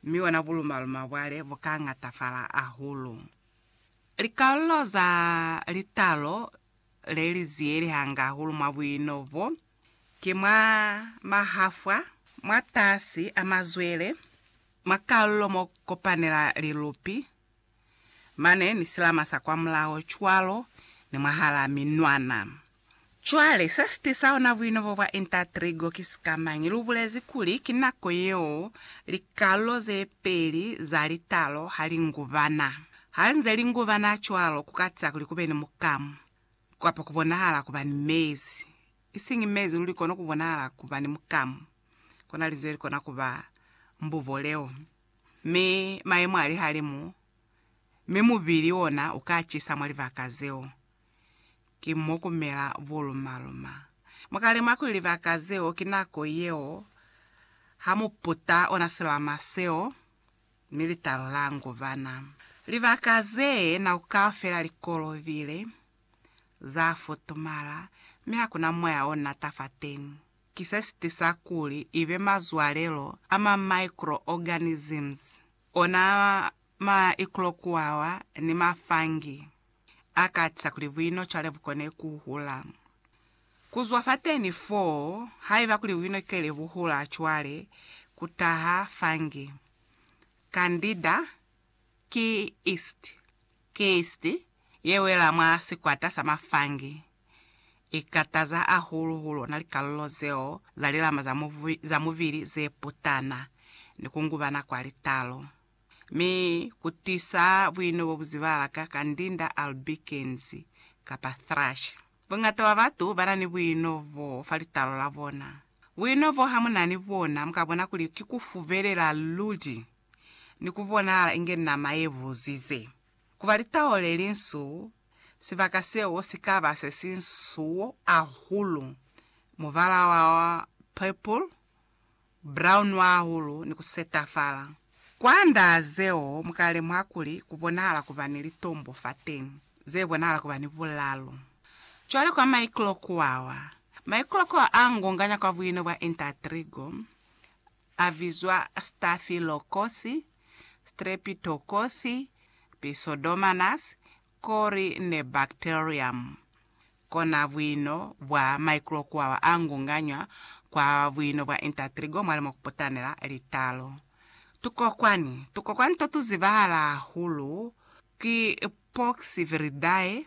Mi ona bulumaluma bwale bukangatafala ahulu. Likalolo za litalo le li ziyelehanga ahulu mwa buino bo, ki mwa mahafwa, mwatasi a mazwele, mwa kalolo mo kopanela lilupi, Mane ni silama sa kwamulaho cwalo ni mwahalaa minwana. Cwale, se si tisa ona buinobo bwa Intertrigo ki sikamañi? Lu bulezi kuli ki nako yeo likalulo ze peli za litalo ha li ngubana. Ha nze li ngubana cwalo, ku ka tisa kuli ku be ni mukamu, kapa ku bonahala ku ba ni mezi. Isiñi mezi luli kono ku bonahala ku ba ni mukamu. Kona linzwi le li kona ku ba mbubo leo. mi mayemo a lihalimu, mi mubili ona u ka cisa mwa libaka zeo. Ki mo ku mela buluma-luma. Mu ka lemuha kuli libaka zeo ki nako yeo ha mu puta ona silama seo ni litalo la nguvana. Libaka ze nako kaufela li kolobile, za futumala, mi ha ku na moya o nata fateñi. ki se si tisa kuli ibe mazwalelo a ma microorganisms, ona ma iclokuawa ni ma fungi, a ka tisa kuli buino cwale bu kone ku hula. Ku zwa fateni foo, haiba kuli buino kele bu hula cwale, ku taha fungi. Candida ki yeast. Ki yeast ye wela mwa sikwata sa ma fungi. ikataza hahulu ku lona likalulo zeo za lilama za mubili ze putana ni ku ngubana kwa litalo, mi ku tisa buino bo bu zibala ka kandinda albicans kapa thrush. Bungata bwa batu ba na ni buino bo fa litalo la bona. Buino bo ha mu na ni bona, mu ka bona kuli ki ku fubelela luli ni ku bonahala inge nama ye buzize. ku ba litao le linsu, sibaka seo si ka ba se si nsuo hahulu, mubala wa purple, brown hahulu, ni ku setafala. Kwa ndaa zeo, mu ka lemuha kuli ku bonahala ku ba ni litombo fateni, ze bonahala ku ba ni bulalo. Cwale kwa maiklokoawa, maiklokoawa a ngonganya kwa buino bwa intertrigo, A bizwa Stafilokosi, Strepitokothi, Pseudomonas, kori ne Bacterium. Kona buino bwa maikrokuawa a ngunganywa kwa buino bwa intatrigo mwa limo kuputanela litalo. Tukokwani Tukokwani to tu zibahala hahulu ki Poxviridae,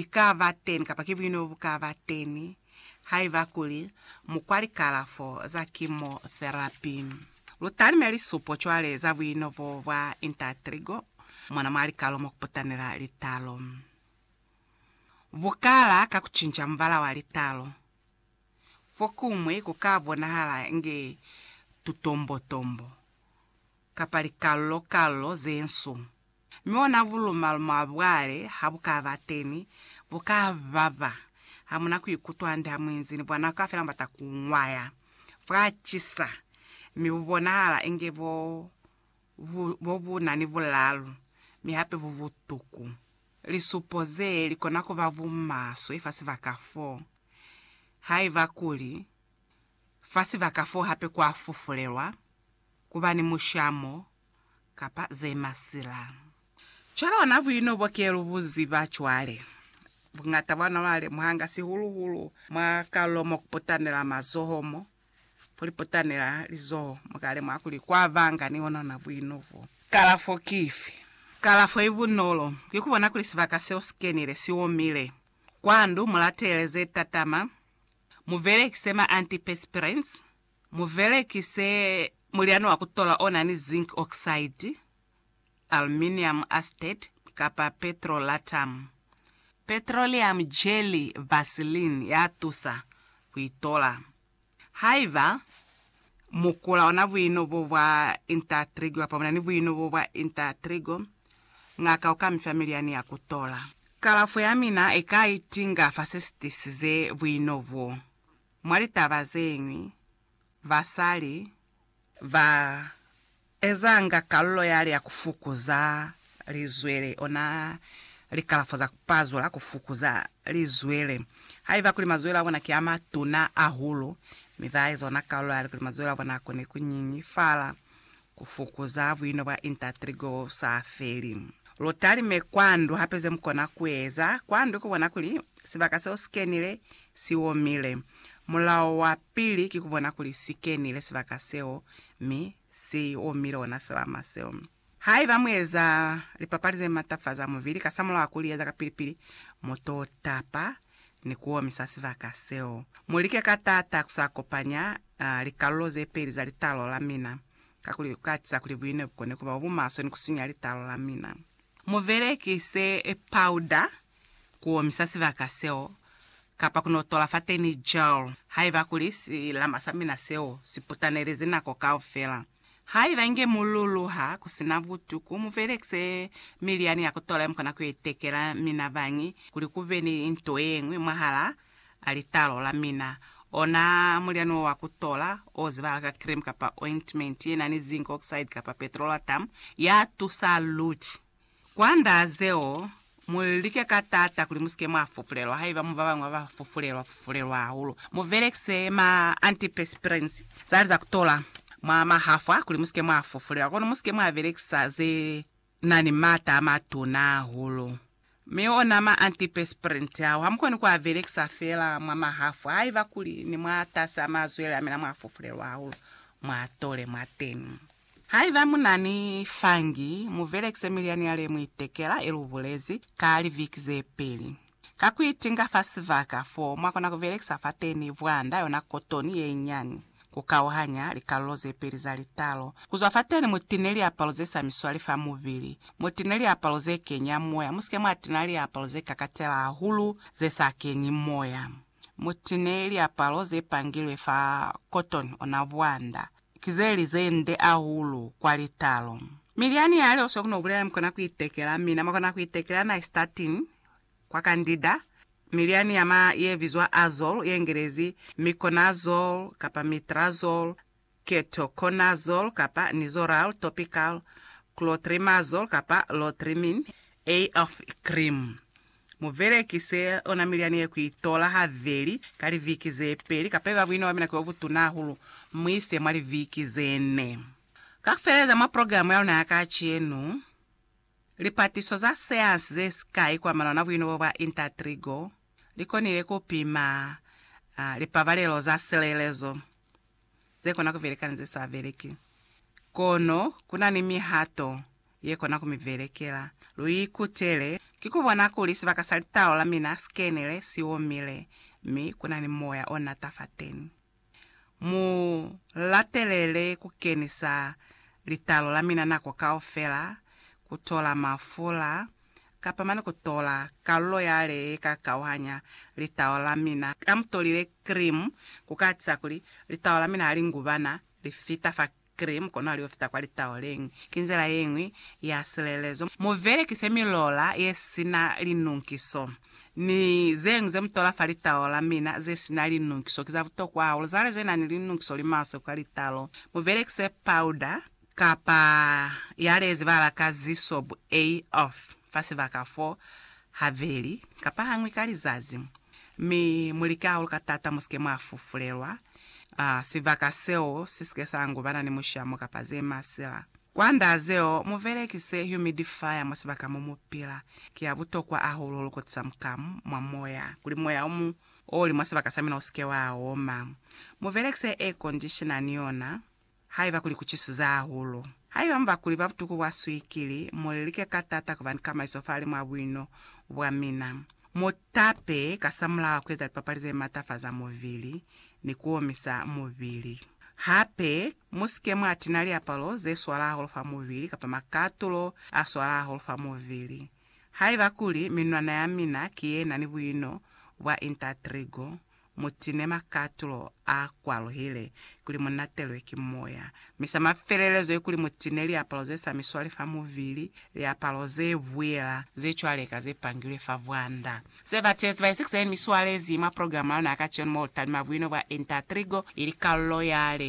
i ka ba teni kapa ki buino bu ka ba teni haiba kuli mu kwa likalafo za kimotherapi. Lu talime lisupo cwale za buino bo bwa intatrigo mona mwa likalo mo ku putanela litalo. Bu kala ka ku cinca mubala wa litalo. Fokuñwi ku ka bonahala inge tutombotombo kapa likallo-kallo ze nsu. Mi ona buluma-luma bwale ha bu ka ba teni, bu ka baba. Ha mu na ku ikutwa hande ha mu inzi ni bwana kaufela mubata ku nwaya. Bwa cisa, mi bu bonahala inge bo, bu, bo bu na ni bulalu, mi hape bu butuku. Lisupo ze li kona ku ba bumaswe fa sibaka fo, haiba kuli, fa sibaka fo hape kwa fufulelwa, ku ba ni mushamo, kapa ze masila. Cwalo na buino bo ke lu bu ziba cwale, buñata bwa nwa ba lemuhanga sihulu-hulu mwa kalulo mo ku putanela mazoho mo. Ku li putanela lizoho, mu ka lemuha kuli kwa banga ni ona ona buino b'o. Kalafo ki ifi? Kalafo i bunolo, ki ku bona kuli sibaka seo si kenile, si omile. Kwa ndu, mu latele ze tatama, mu belekise ma antiperspirants, Mubelekise mulyani wa kutola onani zinc oxide, aluminium acetate, kapa petrolatum, petroleum jelly, vaseline ya tusa kuitola. Haiba mukula ona buino bo bwa intertrigo kapa bunani buino bo bwa intertrigo, ngaka uka mifa milyani ya kutola. Kalafo yamina ika itinga fa sesitisize buino bo. Mwa litaba zeñwi, basali ba ezanga kalulo yale ya ku fukuza lizwele ona likalafo za ku pazula ku fukuza lizwele haiba kuli mazwele a bona ki a matuna ahulu, mi ba eza ona kalulo yale kuli mazwele a bona a kone ku nyinyifala. Ku fukuza buino bwa intatri go sa feli. Lu talime kwa ndu hape ze mu kona ku eza kwa ndu ku bona kuli sibaka seo si kenile si omile. Mulao wa pili ki ku bona kuli si kenile sibaka seo mi si omile ona silama seo. Haiba mu eza lipapali ze matafaza mubili kasamulaho wa ku li eza kapili-pili, mu to tapa ni ku omisa sibaka seo. Mu like ka taata ku sa kopanya A Likalulo zepeli za litalo la mina, kakuli ku atiza kuli buine bukone kuba bobumaswe ni kusinya litalo la mina. Mubelekise pawuda kuomisa sibaka seo, kapa kunotola fateni gel haiba kuli silama sa mina seo siputanelezi nako kaufela. Haiba inge mululuha kusina butuku, mubelekise milyani ya kutola yemukona kuitekela mina bañi kuli kube ni nto yeñwi mwahalaa a litalo la mina, ona mulyani wo wa ku tola, o zibahala ka cream kapa ointment ye na ni zinc oxide kapa petrolatum, ya tusa luti. Kwa nda zeo, mu like ka taata kuli mu si ke mwa fufulelwa. Haiba mu ba bañwi ba ba fufulelwa fufulelwa hahulu, mu belekise ma antiperspirants za li za ku tola mwa mahafwa kuli mu si ke mwa fufulelwa. Kono mu si ke mwa belekisa ze. Na ni maata a matuna hahulu. Mi ona ma antipesprint ao hamukoni ku a belekisa fela mwa mahafu haiba kuli ni mwa tasi a mazwele a mina mwa fufulelwa hahulu mwa tole mwateni. Haiba mu na ni fungi, mu belekise milyani yale mu itekela, ye lu bulezi, ka liviki ze peli. Ka ku itinga fa sibaka fo mwa kona ku belekisa fateni bwanda, yona kotoni ye nyani, ku kauhanya likalulo ze peli za litalo ku zwa fateni, mu tine liapalo ze sa miswali fa mubili, mu tine liapalo ze kenya moya, mu si ke mwa tina liapalo ze kakatela hahulu ze sa kenyi moya, mu tine liapalo ze pangilwe fa kotoni, ona bwanda, ki ze li ze nde hahulu kwa litalo. Mi lyani ya lyo, se ku no bulela, mi kona ku itekela, mina mwa kona ku itekela nystatin, kwa kandida, milyani ya ma ye bizwa Azole, ye Ngelezi, Miconazole kapa Mitrazole, Ketoconazole kapa Nizoral, Topical, Clotrimazole kapa Lotrimin, AF cream. Mu belekise ona milyani ye ku itola habeli ka liviki ze peli kapa iba buina bwa mina ki bo butuna hahulu, mu ise mwa liviki ze ne. Ka ku feleza mwa programu ya luna ya kacenu, Lipatiso za seansi ze sikai kwa malona buinobo bwa Intertrigo li konile ku pima lipabalelo za silelezo ze kona ku beleka ni ze sa beleki. Kono ku na ni mihato ye kona ku mi belekela. Lu ikutele ki ku bona kuli sibaka sa litalo la mina si kenile si omile mi ku na ni moya o nata fateni. Mu latelele ku kenisa litalo la mina nako kaufela, ku tola mafula, kapa mane ku tola kalulo yale ye ka kauhanya litalo la mina. Ha mu tolile krimu, ku ka atiza kuli litalo la mina ha li ngubana, li fita fa Cream kono ali ofita kwa litaoleng. Ki nzila yeñwi ya silelezo. Mu velekise milola ye sina linunkiso. Ni zeñwi ze mu tola fa litaola mina ze sina linunkiso ki za butokwa hahulu. Zale ze nani linunkiso li maswe kwa litalo. Mu velekise powder kapa yalezi bala ka zisobu. A off. fa sibaka fo habeli kapa hañwi ka lizazi, mi mu lika hahulu ka taata mu si ke mwa fufulelwa, sibaka seo si si ke sa angu bana ni mushamo kapa ze masila. Kwand'a zeo, mu belekise humidifier mwa sibaka mo mu pila. Ki ya butokwa hahulu hulu ku tisa mukamu mwa moya, kuli moya o mu o li mwa sibaka sa mina u si ke wa oma. Mu belekise air conditioner ni yona. Haiba kuli ku cisize hahulu. Haiba mu ba kuli ba butuku bwa swikili, mu lilike ka tata ku ba ni kamaiso fale mwa buino bwa mina. Mu tape kasamulaho ku eza lipapali ze matafaza mubili ni ku omisa mubili. Hape, mu si ke mwa tina liapalo ze swala hahulu fa mubili kapa makatulo a swala hahulu fa mubili. Haiba kuli minwana ya mina ki ye na ni buino bwa intertrigo, Mu tine makatulo a kwaluhile kuli mu natelwe ki moya. Mi sa mafelelezo ye kuli mu tine liapalo ze sa mi swali fa mubili, liapalo ze buyela ze cwaleka ze pangilwe fa bwanda. Se batezi ba Ezekiele mi swalezi mwa programa ya luna ya kacenu mo lu talima buino bwa enta ya trigo ili kalulo ya le